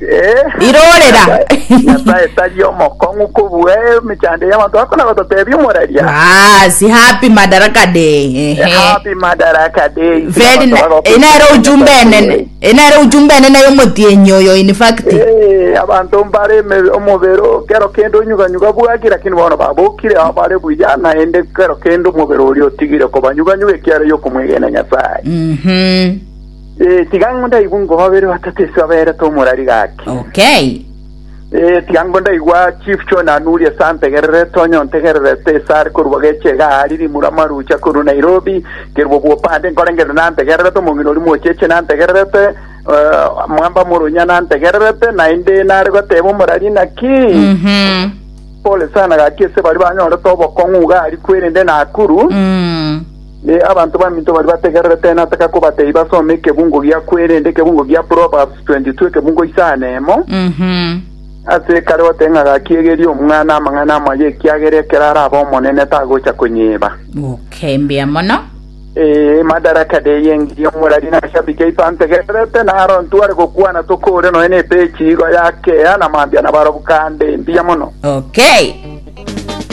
Eh, Irorera. Nyasae- Nyasae tari omokong'u kobua emechando y'abanto bakona batotebia omoraria. Basi happy madaraka day. Ehe. Happy Madaraka Day. Very na- enere ujumbe enene. Enere ujumbe enene yomotienyi oyo in fact. Eh, abantu mbare eme- omobero kero kende onyuganyuga bwaki lakini bono babokire abo bare buya naende kero kende omobero oria otigire kobanyuganyuga ekiara yokomwegena nyasaye Mhm. Eh, tiga ngo ndaigwe ngo babere batatu ase abaerete omorari gaki. Okay. Eh, tiga ngo ndaigwa Chief John Anuri ase antegererete onye ontegererete ase are korwa geche iga ari rimura marucha korwa Nairobi kerwa bwopande nkorengere nantegererete omong'ina ori mocheche nantegererete eh, mwamba morunya nantegererete naende nare goteba omorari naki Mhm. pole sana gaki ase bari banyorete obokong'u iga ari kwerende Nakuru Mm. Ne abanto baminto baria bategererete nataka kobatebia basome ekebungo gia kwerenda, ekebungo gia Proverbs 22, ekebungo isaa na emo. Mhm. Ase ekare goteba ng'a gakiegerie omwana amang'ana amaya ekiagera ekero arabe omonene tagocha konyeba. Okay, mbuya mono. Ee, madaraka de yengirie omorari nashabike iso antegererete naro ntware gokwana tokore noe ne page igo ya kea na mambia na barobwo kande. Mbuya mono. Okay.